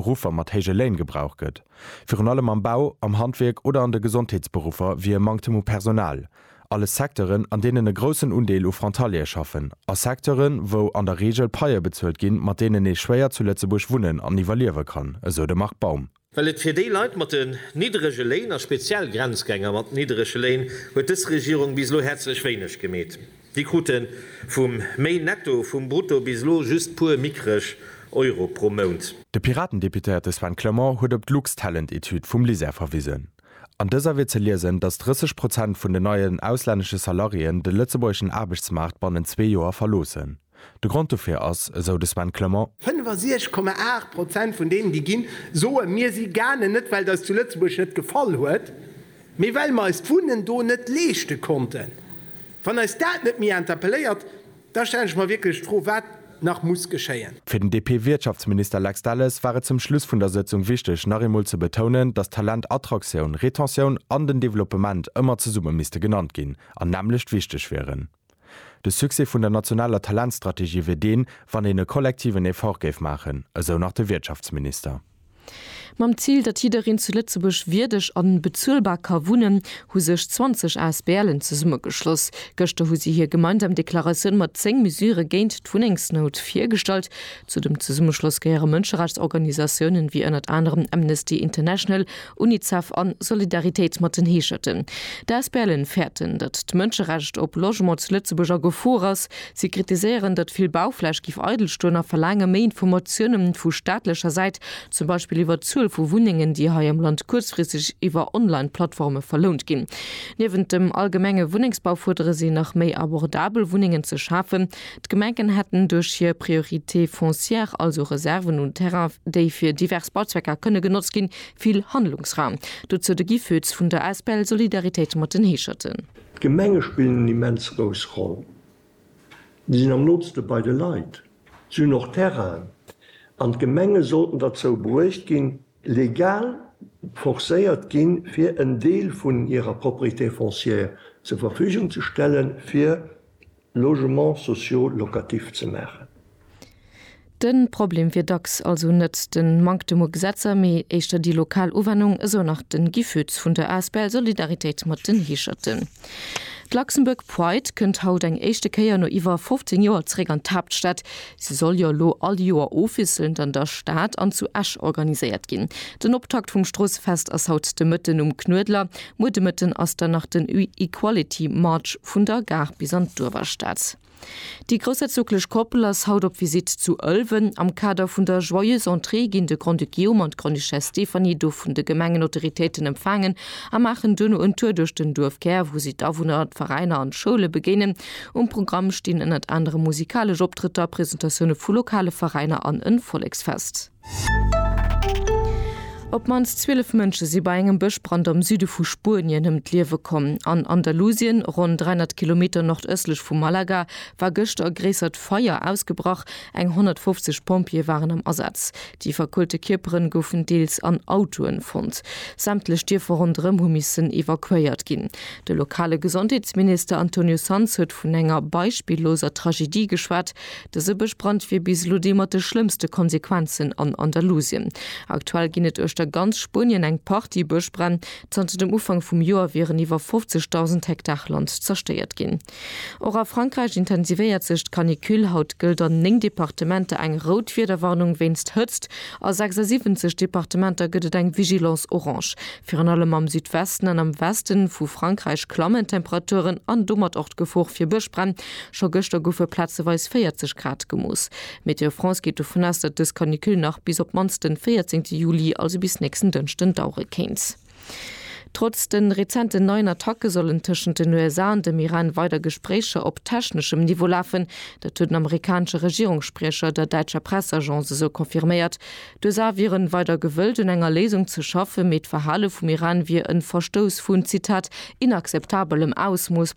Ruffer mat héije Léin gebraucht gëtt. Virun allem am Bau, am Handwierk oder an de Gesondheetsberuffer wier e Manktem u Personal. Alles Secteuren, an deenen e groussen Undeel u Frontaliere schaffen, a Secteuren, wou an der Reegel Paië bezuelt ginn, mat deenen ee schwéier zu Lëtzebuerg wunnen an iwwerliewe kann, esou de Marc Baum. Well et fir déi Leit mat den nidderege Léin, a speziell Grenzgänger mat nidderege Léin, huet dës Regierung bis elo häerzlech wéineg gemeet. Déi krute vum méi netto vum brutto bis elo just puer mickreg Euro pro Mount. De Piratendeputéierte Sven Clement huet op d'Luxtalent-Etüd vum LISER verwisen. An dëser wier ze liesen, datt 30 Prozent vun den neien auslännesche Salariéen de lëtzebuergeschen Aarbechtsmaart bannent zwee Joer verloossen. De Grond dofir ass, esou de Sven Clement. 65 Komma 8 Prozent vun deenen, déi ginn, soe mir si gaangen, net well et eis zu Lëtzebuerg net gefall huet, Mee well mer eis d'Wunnen do net leeschte konnten. Wann eis dat net méi interpelléiert, da stellen ech mer wierklech d'Fro, wat nach muss geschéien. Fir den DP-Wirtschaftsminister Lex Delles war et zum Schluss vun der Sëtzung wichteg, nach eemol ze betounen, datt Talent, Attraktioun, Retentioun an den Developpement ëmmer zesumme misste genannt ginn an nämmlecht wichteg wieren. De Succès vun der nationaler Talentstrategie wier deen, wann een e kollektiven Effort géif maachen, esou nach de Wirtschaftsminister. Mam Zil, datt jiddereen zu Lëtzebuerg wierdeg a bezuelbar ka wunnen, hu sech 20 Asbl'en zesummegeschloss. Gëschter hu si hir gemeinsam Deklaratioun mat 10 Mesure géint d'Wunnengsnout virgestallt. Zu dem Zesummeschloss gehéiere Mënscherechtsorganisatiounen, wéi ënnert anerem Amnesty International Unicef a Solidaritéit mat den Heescherten. D'Asbln fäerten, datt d'Mënscherecht op Logement zu Lëtzebuerg a Gefor ass. Si kritiséieren, datt vill Baufläch giff eidel stoen a verlaange méi Informatiounen vu staatlecher Säit, zum Beispill iwwer d'Zuel vu Wunnengen, déi hei am Land kuerzfristeg iwwer Online-Plattforme verlount ginn. Niewent dem allgemenge Wunnengsbau fuerdere si nach méi abordabel Wunnengen ze schafen. D'Gemengen hätten duerch hir Priorité foncière also Reserven un Terrain, déi fir divers Bauzwecker kënne genotzt ginn, Vill Handlungsraum, dozou de Guy Foetz vun der asbl Solidaritéit mat den Heescherten. D'Gemenge spillen eng immens grouss Roll. Si sinn am nootste bei de Leit. Si hunn och Terrainen. An d'Gemenge sollten derzou bruecht ginn, legal forcéiert ginn, fir en Deel vun hirer Propriété foncière zur Verfügung ze stellen, fir Logements sociaux locatifs ze maachen. De Problem wier dacks also net de Manktem u Gesetzer, mee éischter déi lokal Uwennung, esou nach de Guy Fütz vun der asbl Solidaritéit mat den Heescherten. D'Luxembourg Pride kënnt haut eng éischte Kéier no iwwer 15 Joer zeréck an d'Haaptstad. Si soll jo elo all Joer ofwiesselnd an der Stad an zu Esch organiséiert ginn. Den Optakt vum Stroossefest ass haut de Mëtten um Knuedler. Muer de Mëtten ass dann nach den Equality March vun der Gare bis an d'Uewerstad. Déi groussherzoglech Koppel ass haut op Visitt zu Ëlwen. Am Kader vun der Joyeuse Entrée ginn de Grand-Duc Guillaume an d'Grande-Duchesse Stéphanie do vun de Gemengenautoritéiten empfaangen a maachen duerno en Tour duerch den Duerfkär, wou si d'Awunner, d'Veräiner an d'Schoule begéinen. Um Programm stinn ënnert anerem musikalesch Optrëtter, Presentatioune vu lokale Veräiner an en Volleksfest. Op d'mannst 12 Mënsche si bei engem Bëschbrand am Süde vu Spuenien ëm d'Liewe komm. An Andalusien, ronn 300 Kilometer nordëstlech vu Malaga, war gëschter e gréissert Feier ausgebrach. Eng 150 Pompjeeë waren am Asaz. Déi verkoelte Kierpere goufen deels an Autoe fonnt. Sämtlech Dierfer ronderëm hu missen evakuéiert ginn. De lokale Gesondheetsminister Antonio Sanz huet vun enger beispilloser Tragedie geschwat. Dëse Bëschbrand wier bis elo dee mat de schlëmmste Konsequenzen an Andalusien. Aktuell ginn et uechter ganz Spuenien eng Partie Bëschbränn. Zanter dem Ufank vum Joer wieren iwwer 50.000 Hektar Land zerstéiert ginn. Och a Frankräich intensivéiert sech d'Canicule. Haut gëllt an 9 Departementer eng rout Wiederwarnung wéinst Hëtzt. A 76 Departementer gëtt et eng Vigilance orange. Virun allem am Südwesten an am Weste vu Frankräich klammen d'Temperaturen an domat och d'Gefor fir Bëschbränn. Scho gëschter goufe plazeweis 40 Grad gemooss. Météo France geet dovun aus, datt dës Canicule nach bis op d'mannst de 14 Juli, also bis nächsten Dënschden, dauere kéint. Trotz de rezenten neien Attacke sollen tëschent den USA an dem Iran weider Gespréicher op techneschem Niveau lafen. Dat huet den amerikanesche Regierungsspriecher der däitscher Presseagence esou confirméiert. D'USA wieren weider gewëllt un enger Léisung ze schaffen, mee d'Verhale vum Iran wier en Verstouss vun, Zitat, inakzeptabelem Ausmooss.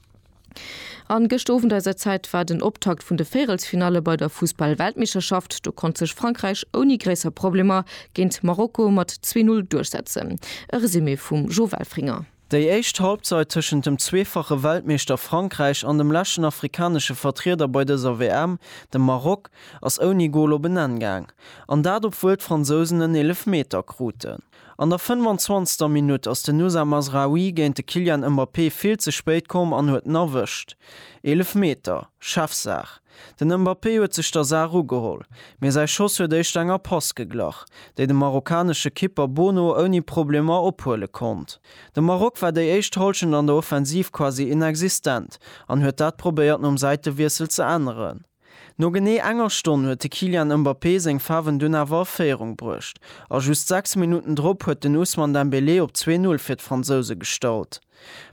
An gëscht Owend eiser Zäit war den Optakt vun de Véirelsfinalle bei der Fussball-Weltmeeschterschaft. Do konnt sech Frankräich ouni gréisser Problemer géint Marokko mat 2-0 duerchsetzen. E Resumé vum Jo Welfringer. Déi éischt Halbzeit tëschent dem zweefache Weltmeeschter Frankräich an dem leschten afrikanesche Vertrieder bei dëser WM, dem Maroc, ass ouni Gol op en Enn gaang. An dat obwuel d'Fransousen en Eelefmeter kruten. An der 25. Minutt ass den Nusa Mazraoui géint de Kylian Mbappé vill ze spéit komm an huet en erwëscht. Eelefmeter, Chefsaach. Den Mbappé huet sech der Saach ugeholl, mee säi Schoss huet éischter enger Pass geglach, déi de marokkanesche Kipper Bono ouni Problemer ophuele konnt. De Maroc war déi éischt Hallschent an der Offensiv quasi inexistent an huet dat probéiert nom Säitewiessel ze änneren. No genee enger Stonn huet de Kylian Mbappé seng Faarwen dunn awer a Féierung bruecht a just 6 Minutten drop huet den Ousmane Dembélé op 2-0 fir d'Fransouse gestallt.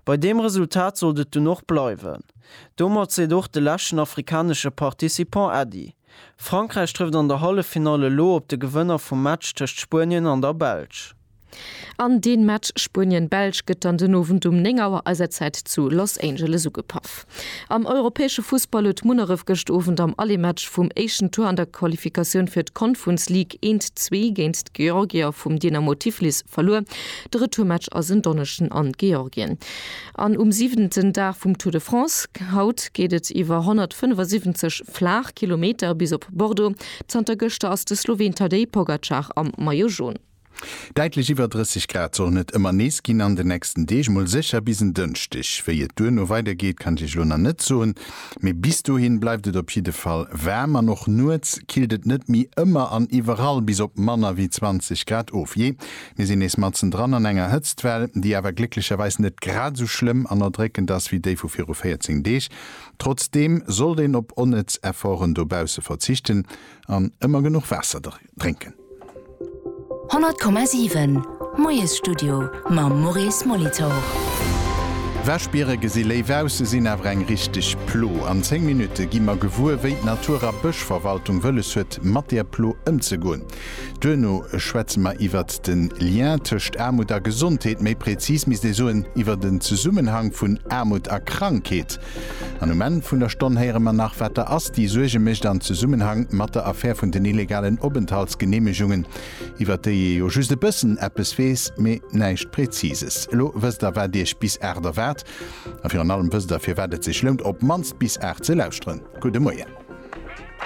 Bei deem Resultat sollt et dunn och bleiwen. Domat seet och de leschten afrikanesche Participant Äddi. Frankräich trëfft an der Halleffinall elo op de Gewënner vum Match tëscht Spuenien an der Belsch. An dee Match Spuenien-Belsch gëtt dann den Owend um 9 Auer eiser Zäit zu Los Angeles ugepaff. Am europäesche Fussball huet Munneref gëscht Owend am Allematch vum éischten Tour an der Qualifikatioun fir d'Confuns League eent zwee géint d'Georgier vum Dynamo Tiflis verluer. De Retourmatch ass en Donneschden an Georgien an um siwenten Dag vum Tour de France. Haut geet et iwwer 175 Flaachkilometer bis op Bordeaux. Zanter gëschter ass de Sloween Tadej Pogacar am Maillot Jaune. Däitlech iwwer 30 Grad sollen et ëmmer nees ginn an de nächsten Deeg, mol sécher bis en Dënschdeg. Wéi et duerno weider geet, kann ech iech elo nach net soen, mee bis dohin bleift et op jidde Fall waarm an och nuets killt et net méi ëmmer an iwwerall bis op manner wéi 20 Grad of. Jee, mir sinn nees matzen dran an enger Hëtztwell, déi awer glécklecherweis net grad esou schlëmm an erdréckend ass wéi déi vu viru 14 Deeg. Trotzdeem sollt een op onnëtz Efforten dobausse verzichten an ëmmer genuch Waasser drénken. 100,7 Moiesstudio mam Maurice Molitor. Wäschbiere gesi léif aus, se sinn awer eng richteg Plo. An 10 Minutte gi mer gewuer, wéi d'Natur a Bëschverwaltung wëlles huet, mat där Plo ëmzegoen. Duerno schwätze mer iwwert de Lien tëscht Aarmut a Gesondheet, méi prezis misst ee soen, iwwert en Zesummenhang vun Aarmut a Krankheet. An um Enn vun der Stonn héiere mer nach, wat der ASTI Suerge mécht an Zesummenhang mat der Affär vun den illegalen Openthaltsgeneemegungen, iwwert déi ee jo just e bëssen eppes weess, mee näischt Präzises. Elo wësst der, wat iech bis aacht erwaart. A virun allem wësst der, firwat et sech lount, op d'mannst bis aacht ze lauschteren. Gudde Moien.